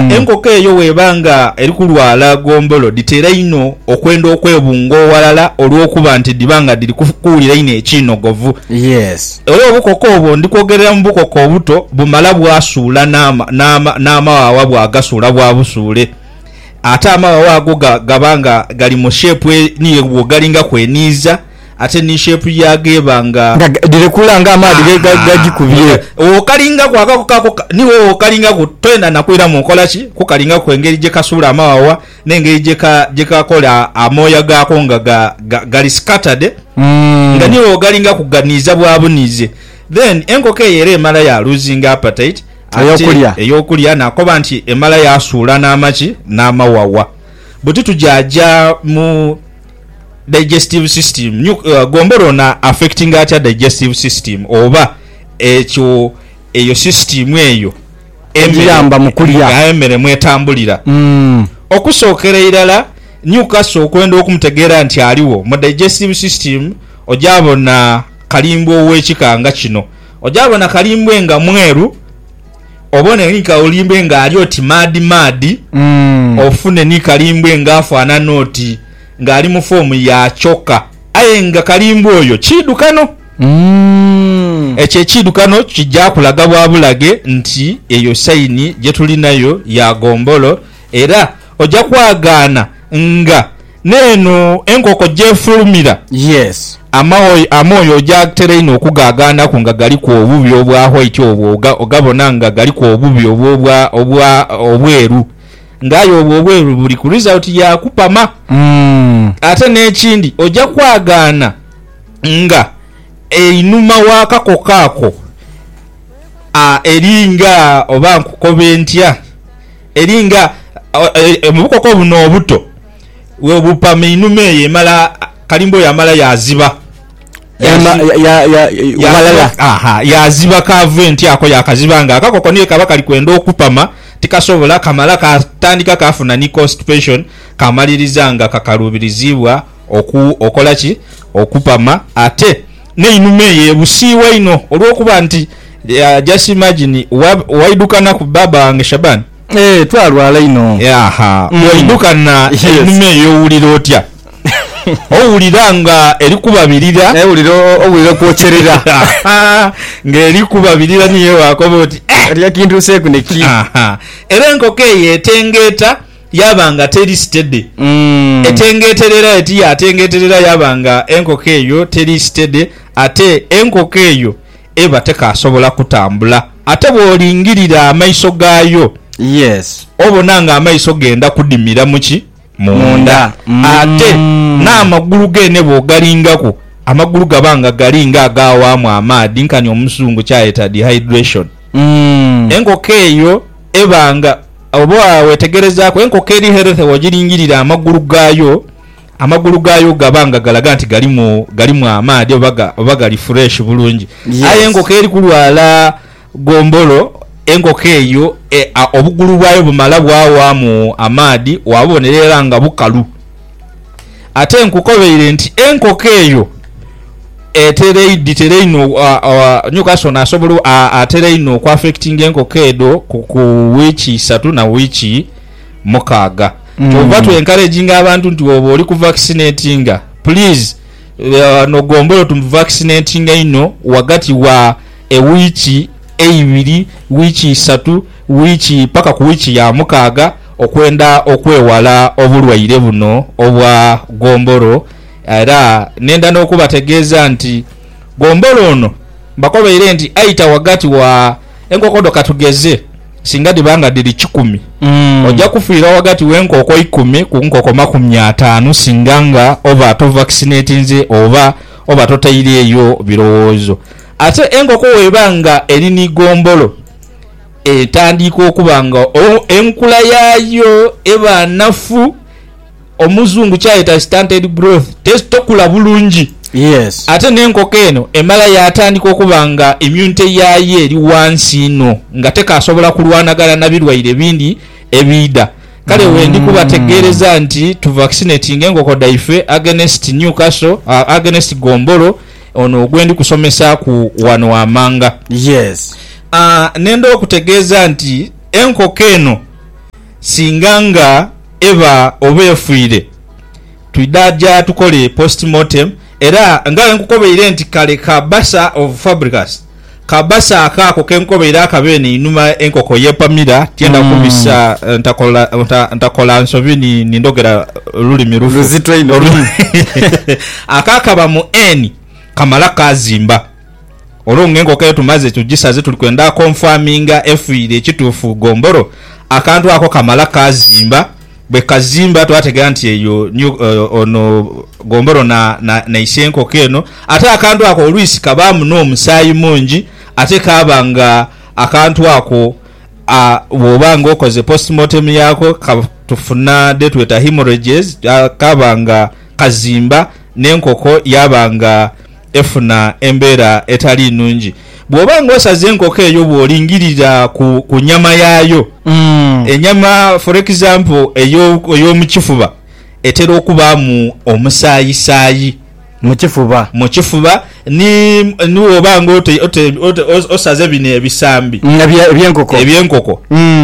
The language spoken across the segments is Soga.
enkoko eyo bw'eba nga eri kulwala gombolo dhitera inho okwenda okwebunga oghalala olw'okuba nti dhiba nga dhiri kuwulira inho ekiinogovu. Era obukoko obwo ndi kwogerera mu bukoko obuto bumala bwasuula n'amawawa bwagasuula bwabusuule. Ate amawawa ago gaba nga gali mu sheepu ni bwo galingaku eniiza. Ate ni shape yaago eba nga. Nga dhirekula nga amaadhi bwe gagikubye. Owokalingaku akako kaako ni wowokalingaku toyenda na kwiramu nkola ki kukalingaku engeri gye kasuula amawawa n'engeri gye kakola amooya gaako nga gali scattered nga ni wogalingaku ganiiza bwabuniize. Then enkoko eyo era emala ya loosinga appetite ate ey'okulya nakoba nti emala yasuula n'amaki n'amawawa. Buti tugya gya mu Digestive system, New, Gombolo ono affectinga atya digestive system oba ekyo eyo system eyo emere Egiyamba mu kulya. nga emere mwetambulira. Mm. Okusookera irala Newcastle okwenda okumutegeera nti aligho mu digestive system oja bona kalimbwe ow'ekika nga kino. Oja bona kalimbwe nga mweru. Obone ni kaolimbwe ng'ali oti maadhi-maadhi, ofune ni kalimbwe ng'afaanana oti ng'ali mu foomu ya kyoka. Aye nga kalimbwe oyo kiidhukano, ekyo ekiidhukano kija kulaga bwa bulaghe nti eyo saini gye tulinayo ya ggombolo, era oja kwagaana nga. N'eno enkoko gy'efulumira, amoyo ojaagtera inho okugaagaanaku nga galiku obubi obwa white obwo ogabona nga galiku obubi obwo obwa obweru. Nga aye obwo obweru buli ku result ya kupama. Ate n'ekindi oja kwagaana nga einhuma w'akakoko ako eri nga oba nkukobe ntya Eri nga mu bukoko buno obuto bwe bupama einhuma eyo emala kalimba oyo amala yaaziba. Yaaziba kaava entyako yaakaziba nga akakoko ni bwe kaba kali kwenda okupama tikasobola kamala kaatandika kaafuna ni constipation kaamaliriza nga kakaluubiriziibwa okola ki? Okupama ate. N'einhuma eyo ebusiibwa inho olw'okuba nti just imagine waidukana ku baaba wange Shaban. Eeh twalwala inho. Yaaha. Waidukana einhuma eyo owulira otya? Owulira nga eri kubabirira. Owulira, owulira okwokyerera. Yaaha. Nga eri kubabirira niyo wakoba oti, Eeh! Oti akintuuseeku neki? Yaaha. Era enkoko eyo etengeeta. Yaaba nga teri sitede. Etengeeterera eti yaatengeeterera yaaba nga enkoko eyo teri sitede, ate enkoko eyo eba tekaasobola kutambula. Ate bw'olingirira amaiso gaayo, obona ng'amaiso geenda kudimira mu ki? Munda. Ate n'amagulu geene bw'ogalingaku, amagulu gaba nga gali ng'agaawaamu amaadhi, nkani Omuzungu ky'ayeta dehydration. Enkoko eyo Ebanga. Oba wetegerezaaku, enkoko eri healthy wogiringirira amagulu gaayo, amagulu gaayo gaba nga galaga nti galimu galimu amaadhi oba oba gali fresh bulungi. Aye enkoko eri kulwala gombolo, enkoko eyo obugulu bwayo bumala bwawaamu amaadhi, wabubonera era nga bukalu. Ate nkukobeire nti enkoko eyo etera inho Newcastle nasobola atera inho okuafekitinga enkoko edho ku wiiki isatu na wiiki mukaaga. Kyova hmm. twenkareginga abantu nti woba oli ku vaccinatinga please uh, no gombolo tu vaccinatinga inho wagati wa ewiiki eibiri wiiki isatu wiiki paka ku wiiki ya mukaaga okwenda okwewala obulwaire buno obwa gombolo era nenda n'okubategeeza nti gombolo ono mbakobeire nti aita ghagati wa enkoko dho katugeze singa dhiba nga dhiri kikumi oja kufiira ghagati w'enkoko ikumi ku nkoko makumi ataanu singa nga oba tovakisinetinze oba oba totaireeyo birowoozo. Ate enkoko w'eba nga eri ni gombolo. etandiika okuba nga enkula yaayo eba nnafu, Omuzungu kyayeta stunted growth, tokula bulungi. Yes. Ate n'enkoko eno emala yaatandika okuba nga immunity yaayo eri ghansi inho nga tekaasobola kulwanagana na birwaire ebindi ebiidha. Kale wendi kubategeereza nti tu vaccinatinge enkoko dhaife against Newcastle, against gombolo, Ono gwe ndi kusomesaaku wano wammanga. Yes. Aah, nenda okutegeeza nti enkoko eno singa nga eba oba efiire, twidha ja tukole post mortem era nga bwe nkukobeire nti kale ka basa of fabricas, Ka base ako ako ke nkobeire akabe eno einhuma enkoko y'epamira, tienda kubisa ntakola, nta, ntakola nsobi ni, ni ndhogera lulimi lufu. Luzito inho Olu- luno. ako akaba mu Eni kamala kaazimba. Olwo ng'enkoko eyo tumaze tugisaze tuli kwenda konfaminga efiire ekituufu gombolo, akantu ako kamala kaazimba. Bwe kazimba twategera nti eyo ni ono gombolo na na ise enkoko eno. Ate akantu ako oluisi kabaamu n'omusaayi mungi ate kaaba nga akantu ako a bw'oba nga okoze postmortem yaako ka tufuna dhe tweta hemorrhages, kaaba nga kazimba n'enkoko yaaba nga Efuna embeera etali nnungi bw'oba ng'osaze enkoko eyo bw'olingirira ku, ku nyama yaayo. Enyama, for example, eyo, ey'omu kifuba etera okubaamu omusaayisaayi. Mu kifuba. Mu kifuba. Ni, ni bw'oba ng'ote, ote, ote, o, osaze bino ebisambi. Ebye, eby'enkoko. Eby'enkoko.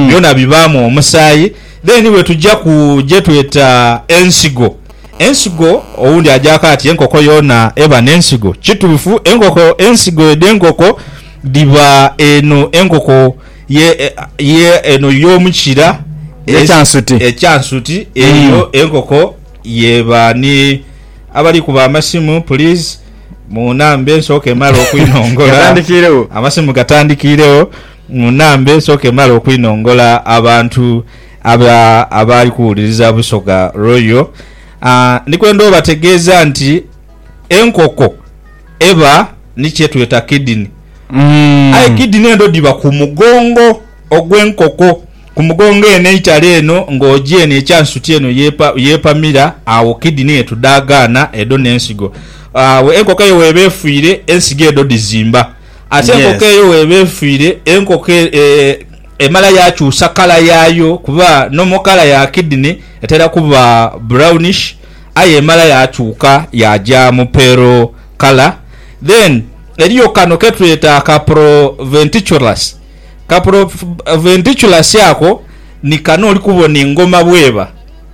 Byona bibaamu omusaayi. Then bwe tuja ku gye tweta ensigo. Ensigo, Owundi ajaku ati enkoko yoona eba n'ensigo. Kituufu enkoko ensigo edh'enkoko dhiba eno enkoko ye ye eno y'omu kira Ekyansuti. ekyansuti eyo enkoko y'eba ni Abali kuba amasimu puliizi munambe nsooke male okwinongola Gatandikiiregho. Amasimu gatandikiiregho munambe nsooke male okwinongola abantu. Abo abaali kuwuliriza Busoga Royal, ndi kwenda obategeeza nti enkoko eba ni kye tweta kidini. Aye kidini edho dhiba ku mugongo ogw'enkoko. Ku mugongo eno eitale eno ng'oja eno ekya nsuti eno yeepamira, agho kidini ye tudhaagaana edho n'ensigo. Agho enkoko eyo weeba efiire, ensigo edho dhizimba. Ate enkoko eyo weeba efiire, enkoko e, e, Emala yaakyusa kala yaayo kuba normal kala ya kidney etera kuba brownish aye emala yaakyuka yaaja mu pale kala. Then eriyo kano ketweta aka proventriculus. Ka proventriculus ako ni kano oli kubona engoma bweba.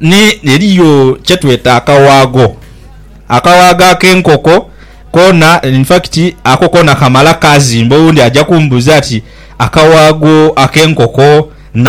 ni, eriyo kye tweta akawaagho, akawaagho ak'enkoko koona, in fact ako koona kamala kaazimba. Owundi aja kumbuuza ati, Akawaagho ak'enkoko na.